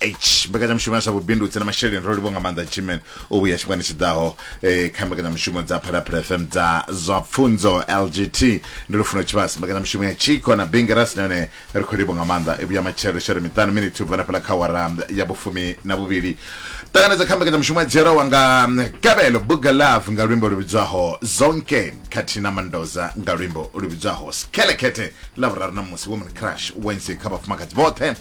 h mbekanyamushumo ya zwa vhubindudzi na masheleni ro livho nga maanḓa jimen u vhuya tshifhingani tshi ḓaho eh, kha mbekanyamushumo dza phalaphala fm dza zwa pfunzo lgt ndi lufuno tshivhasi mbekanyamushumo ya chiko na bingerasi nahone ri khou livho nga maanḓa i vhuya matshelo shere miṱanu miniti u bva na fhala kha wara ya vhufumi na vhuvhili ṱanganedza kha mbekanyamushumo ya dzhielwawa nga mm, gabelo buga love nga luimbo lu vhidzwaho zonke khathihi na mandoza nga luimbo lu vhidzwaho skelekete ḽa vhuraru na musi woman crush wednesday kha vhafumakadzi vhoṱhe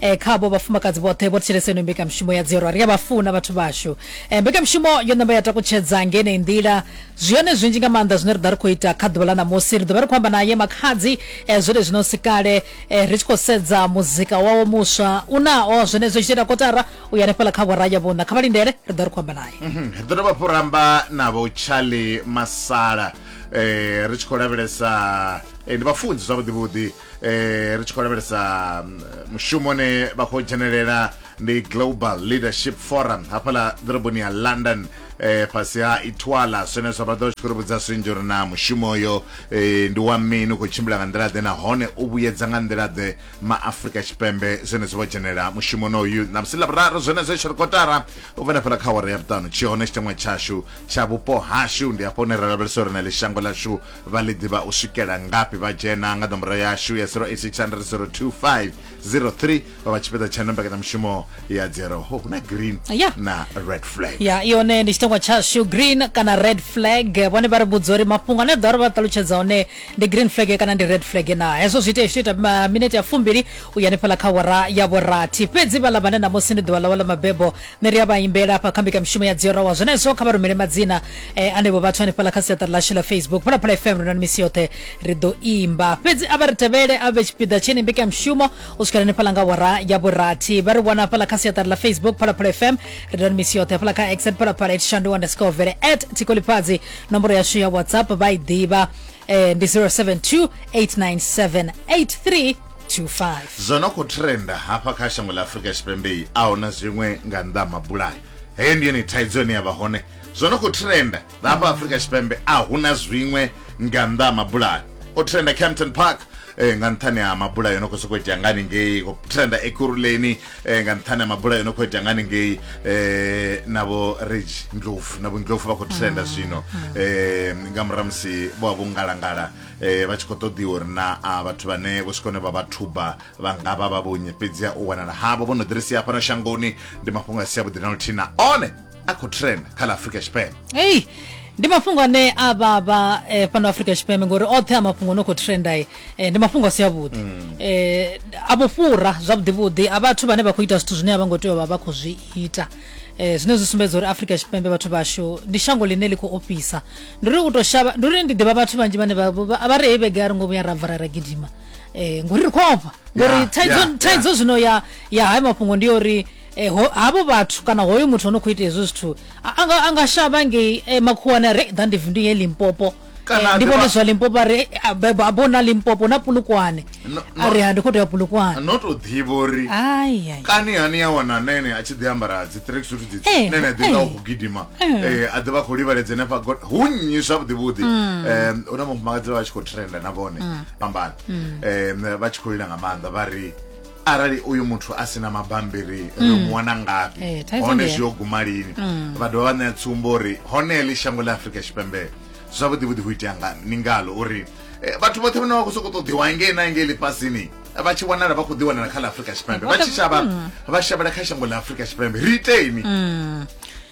e, khavho vhafumakadzi vhoṱhe vho thetshelesa ino mbekamishumo ya dzirwa ri a vha funa vhathu vhashu e, mbekamishumo yo namba ya takutshedza ngenei nḓila zwi hone zwinzhi nga maanḓa zwine ri ḓa ri khou ita kha ḓuvha ḽa ṋamusi ri ḓo vha ri khou amba naye makhadzi e, zwone zwino si kale e, ri tshi khou sedza muzika wawo muswa u naho zwenezwo tshi ita kotara u ya hanefhala kha vhoraya vhuna kha vha lindele ri ḓo ri khou amba naye mhm, ri ḓo dovha hafhu ramba navho charlie masala eh, ri tshi khou lavhelesa eh, ndi vhafunzi zwavhuḓivhuḓi eh ri tshi khou lavhelesa mm, mushumo ne vha khou dzhenelela ndi global leadership forum hafhaḽa ḓoroboni ya london eh fhasi ha itwala zwenezwo vha ḓo tshi khou ri vhudza zwinzhi uri na mushumo uyo eh, ndi wa mini u khou tshimbila nga nḓila ḓe nahone u vhuyedza nga nḓila ḓe ma afrika tshipembe zwenezwo vho dzhenelela mushumo noyu na musi ḽavhuraru zwenezwo tsho ri kotara u vhona fhela kha wara ya vhuṱanu tshi hone tshiteṅwa tshashu tsha vhupo hashu ndi hafho hune ra lavhelesa uri na ḽi shango ḽashu Vha ḽi ḓivha u swikela ngafhi? Vha dzhena nga nomboro yashu ya 0860 025 03 vha vha tshipiḓa tsha mbekanyamushumo ya dzero ho huna green Ya. na red flag ya yone ndi tshitangwa tshashu green kana red flag vhone vha ri vhudza uri mafhungo ane ḓa uri vha ṱalutshedza one ndi green flag kana ndi red flag na hezwo zwi itea zwi ita ma- minete ya fumbili u ya hanefhaḽa kha wara ya vhurathi fhedzi vhaḽa vhane ṋamusi ndi ḓuvha ḽawe ḽa mabebo nṋe ri a vha imbela hafha kha mbekamishumo ya dziyorawa zwenezwo kha vha rumele madzina eh, anevho vhathu hanefhala kha siaṱari lashu ḽa facebook phalaphala fm ri na misi yoṱhe ri ḓo imba fhedzi a vha ri tevhele a vhe tshipiḓa tsheni mbekamishumo u swikela hanefhala nga wara ya vhurathi vha ri wana hafhala kha siaṱari ḽa facebook phalaphala fm ri na misi yoṱhe hafhala kha x phalaphala at shandu underscore vele at tikolifhadzi nomboro yashu ya whatsapp vha i ḓivha eh, ndi 072 897 8325 zwo no khou trenda hafha kha shango ḽa afurika tshipembe a huna zwiṅwe nga nnḓa ha mabulayo heyo ndi yone thaidzo ine ya vha hone zwo no khou trenda hafha afurika tshipembe a huna zwiṅwe nga nnḓa ha mabulayo o trenda campton park eh, nga nṱhani ha mabulayo no khou sokou itea ngani ngei o trenda ekuruleni eh, nga nṱhani ha mabula yo no khou itea nga haningei eh, na vho regi ndlovu na vhundlovu vha khou trenda zwino eh, nga murahu musi vho vha vho ngalangala eh, vha tshi khou ṱoḓiwa uri na a vhathu vhane vho swika hone vha vha thuba vha nga vha vha vhonye fhedzi ha u wanala havho vho no ḓirisia fhano shangoni ndi mafhungo a si avhuḓi na luthihi na one a khou trend kha ḽa afrika tshipembe hey ndi mafhungo ane a vhavha eh, fhano afrika tshipembe ngori oṱhe a mafhungo no khou trenda eh, ndi mafhungo a si avhuḓi mm. eh, a vho fhura zwavhuḓivhuḓi a vhathu vhane vha khou ita zwithu zwine a vha ngo tea u vha vha khou zwi ita eh, zwine zwi sumbedza uri afrika tshipembe vhathu vhashu ndi shango ḽine ḽi khou ofhisa ndi uri u to shavha ndi uri ndi ḓivha vhathu vhanzhi vhane vha ri hei vhege a ri ngo vhuya ra bva ra ra gidima um ngori ri khou ofha ngori thaidzo zwino ya ya hayo mafhungo ndi uri e, ho, havho vhathu kana hoyo muthu ono khou ita hezwo zwithu anga, anga shavha ngei e, makhuwani a re ḓandevu ndi ye limpopo Eh, ndi vhone zwa limpopo ari abo na limpopo na pulukwane ari ha ndi khou tea pulukwane no tou ḓivha uri kani hani ya wana nene a tshi ḓi ambara dzi track suit dzi eh, nene a ḓi nga eh. u gidima a ḓi vha khou livhaledza ne fha god hu nnyi zwavhuḓi vhuḓi mm. hu na mufumakadzi vha tshi khou trenda na vhone mm. fhambana mm. vha tshi khou lila nga maanḓa vha ri arali uyu muthu a sina mabambiri ri mm. mu wana ngafhi eh, hone zwi yo guma lini mm. vha dovha vha ṋea tsumbo uri hone ḽi shango ḽa afurika tshipembe zwavhuḓi vhuḓi hu itea ngani ni ngalo uri eh, vhathu vhoṱhe vhane vha khou sokou ṱoḓiwa ngei na ngei ḽifhasini vha tshi wanala vha khou ḓi wanala kha ḽa afurika tshipembe vha tshi shavha mm. vha shavhela kha shango ḽa afurika tshipembe ri iteni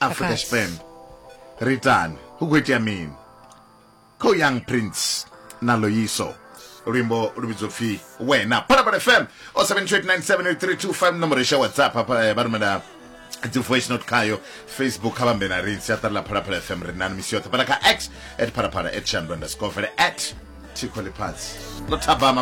afrika tshipembe ri tani hu khou itea mini kha u young prince na loyiso luimbo lu vhidzo pfi wena phalaphala fm o 72897 nomoro isha whatsapp hafha eh, vha rumela dzi voice note khayo facebook kha vhambe na ri siaṱari ḽa phalaphala fm ri nani misi yoṱhe fhala kha x at phalaphala at shandwa underscore vele at thikho ḽifhasi ḽo thabama